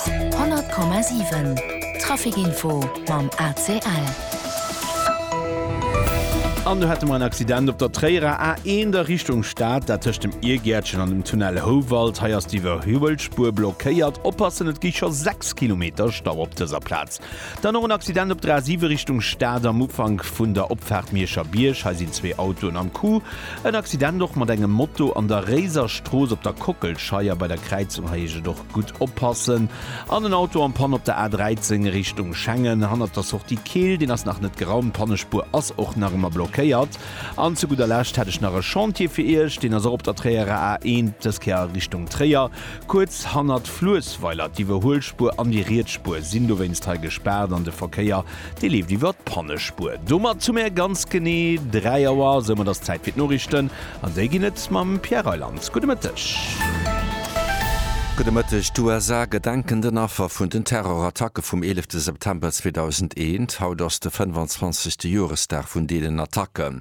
100,7 Trafic Info mam ACL. An do hätte mer en Accident op der Tréierer A1 a Richtung Stad, dat tëscht dem Iergäertchen an dem Tunnel Houwald. Hei ass d'Iwwerhuelspur blockéiert. Oppassen, et gi scho 6 Kilometer Stau op dëser Plaz. Dann och en Accident op der A7 Richtung Stad am Ufank vun der Opfaart Mierscher Bierg. Hei sinn zwee Autoen am Coup. En Accident och mat engem Moto an der Réiserstrooss op der Kockelscheier bei der Kräizung. Hei heescht et och gutt oppassen. An en Auto am Panne op der A13 Richtung Schengen hannert der Sortie Keel. Deen ass nach net geraumt. D'Pannespuer ass och nach ëmmer blockéiert. An zu gudder Lescht hätt ech nach e Chantier fir Iech. Deen ass och op der Tréierer A1, dës Kéier a Richtung Tréier. Kuerz hannert d'Fluessweiler. D'Iwwerhuelspuer an déi Rietsspuer sinn dowéinst hei gespaart an de Verkéier, dee leeft iwwer d'Pannespuer. Domat hu mär ganz genee 3 Auer. Soumat ass Zäit fir d'Noriichten an déi ginn et mam Pierre Reyland. Gudde Mëtteg. Gudde Mëtteg. D'USA gedenken den Affer vun den Terrorattacke vum 11 September 2001. Haut ass de 25. Joresdag vun deenen Attacken.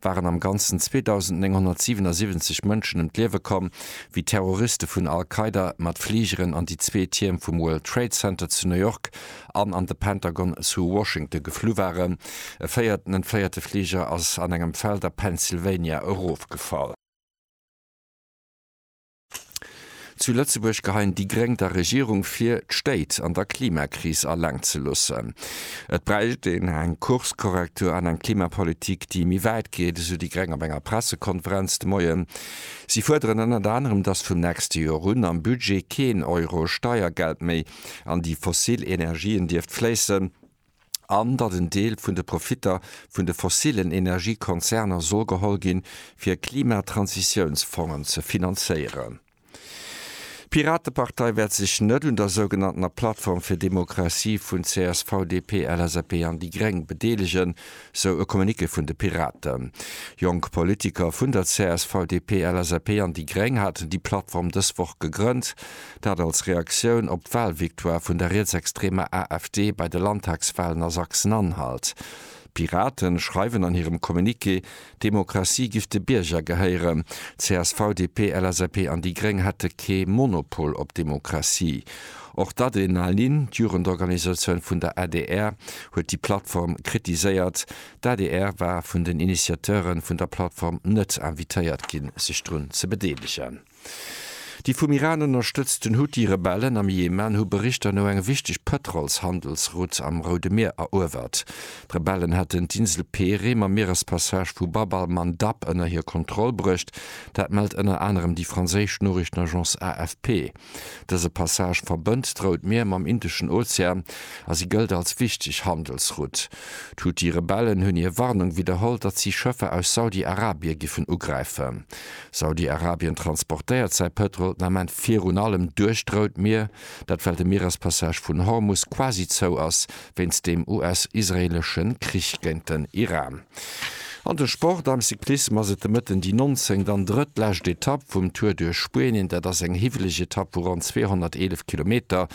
waren am Ganzen 2.977 Mënschen ëm d'Liewe komm, wéi Terroriste vun Al-Qaida mat Fligeren an déi zwee Tierm vum World Trade Center zu New York an an de Pentagon zu Washington geflu waren. E véierten entfléierte Fliger ass an engem Feld a Pennsylvania erofgefall. Zu Lëtzebuerg geheien déi Gréng der Regierung vir, d'Stéit an der Klimakris alleng ze loossen. Et bräicht een eng Kurskorrektur an eng Klimapolitik, déi méi wäit geet, esou déi Gréng op enger Pressekonferenz de Moien. Si fuerderen ënnert anerem, dass vum nächste Joer un am Budget keen Euro Steiergeld méi an déi fossil Energien dierft fléissen. an datt en Deel vun de Profitter vun de fossillen Energiekonzerner soll geholl ginn, fir Klimatransitiounsfongen ze finanzéieren. D'Piratepartei wäert sech net un der sougenanntener Plattform fir Demokratie vun csv, DP, LSAP an déi Gréng bedeelegen, sou e Communiqué vun de Piraten. Jonk Politiker vun der csv, DP, LSAP an déi Gréng haten déi Plattform dës Woch gegrënnt. Dat als Reaktioun op d'Walvictoire vun der rietsextremer AfD bei de Landtagswalen a Sachsen-Anhalt. D'Piraten schreiwen an hirem Communiqué, d'Demokratie giff de Bierger gehéieren. CSV, DP, LSAP an déi Gréng hätte kee Monopol op Demokratie. Och d'Adrenalin, d'Jugendorganisatioun vun der adr, huet déi Plattform kritiséiert. D'adr war vun den Initiateure vun der Plattform net invitéiert ginn, sech drun ze bedeelegen. Déi vum Iran ënnerstëtzten Huthi-Rebellen am Jemen hu Berichter no eng wichteg Pëtrolshandelsroute am Roude Mier eruewert. D'Rebellen hätten d'Insel Pehré mam Mierespassage vu Bab al-Mandab ënner hir Kontroll bruecht. Dat mellt ënner anerem déi franséisch Noriichtenagence AFP. Dëse Passage verbënnt d'Rout Mier mam Indeschen Ozean a si gëllt als wichteg Handelsroute. D'Huthi-Rebellen hunn hir Warnung widderholl, datt si Schëffer aus Saudi-Arabie giffen ugräifen. Saudi-Arabien transportéiert säi Pëtrol den Ament virun allem duerch d'Rout Mier, dat well de Mierespassage vun Hormus quasi zou ass wéinst dem US-israeelesche Krich géint den Iran. An de Sport, Am Cyclissem ass et de Mëtten déi 19. an drëttlescht Etapp vum Tour duerch Spuenien. Dat ass eng hiwweleg Etapp vu ronn 211 Kilometer.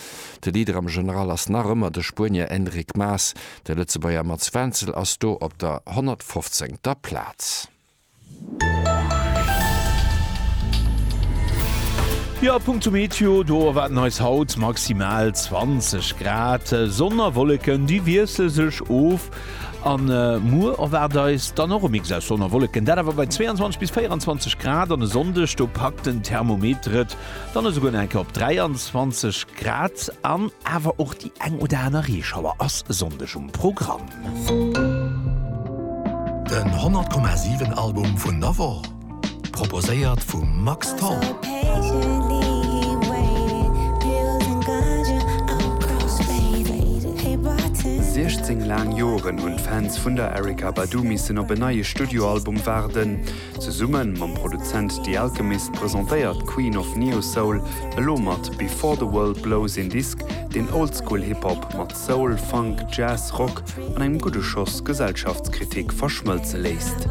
De Leader am General ass nach ëmmer de Spuenier Enric Mas. De Lëtzebuerger Mats Wenzel ass do op der 115. Plaz. Jo, a punkto Meteo, do erwaarden eis haut maximal 20 Grad. Sonn a Wolleken, déi wiessle sech of. A muer erwaart eis dann och e Mix aus Sonn a Wolleken, dat awer bei 22 bis 24 Grad. An e Sonndeg, do packt den Thermometer et dann esouguer nach eng Kéier op 23 Grad an. Awer och déi eng oder aner Reeschauer ass e Sonndeg um Programm. Den 100,7 Album vun der Woch, proposéiert vum Max Tholl. Siechzéng laang Joren hunn d'Fans vun der Erykah Badu missen op en neie Studioalbum waarden. Zesumme mam Produzent The Alchemist presentéiert d'Queen of Neo-Soul elo mat Before the World Blows een Disk, deen Oldschool-Hip-Hop mat. Soul, Funk, Jazz, Rock an engem gudde Schoss Gesellschaftskritik verschmëlze léisst.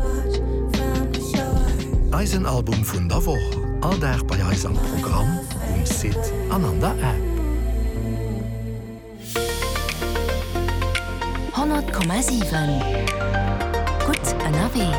Eisen Album vun der Woch, all Dag bei eis am Programm, um Site an an der App. 100,7 gutt ënnerwee.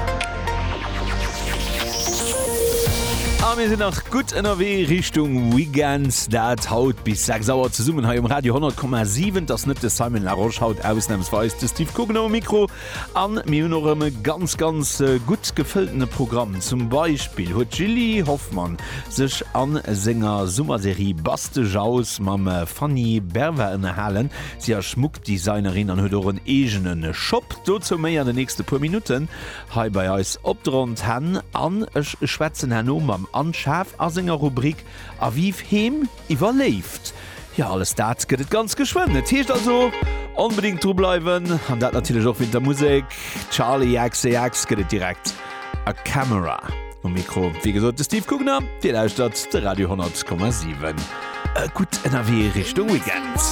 A mir sinn nach gutt ënnerwee Richtung Weekend. Dat haut bis 6 Auer zesummen hei um Radio 10,7. Et ass net de Simon Laroche haut ausnamsweis de Steve Coogan um Mikro. An mir hunn och erëm e ganz, ganz gutt gefëlltene Programm. Zum Beispill huet d'Jilly Hoffmann sech a senger Summerserie Baste Jaus mam Fanny Berva ënnerhalen. Si ass Schmuckdesignerin an huet och en eegene Shop. Dozou méi an den nächste puer Minutten. Hei bei eis op de Rondhänn an ech schwätzen herno mam Anne Schaaf a senger Rubrik Aviv Heem iwwer Léift. Jo, alles dat gëtt et ganz geschwënn. Et heescht also onbedéngt dru bleiwen an dat natierlech och wéint der Musek. Charli XCX gëtt et direkt a Camera. Um Mikro wéi gesot de Steve Gugner. Dir lauschtert de Radio 10,7. E gutt ënnerwee Richtung Weekend.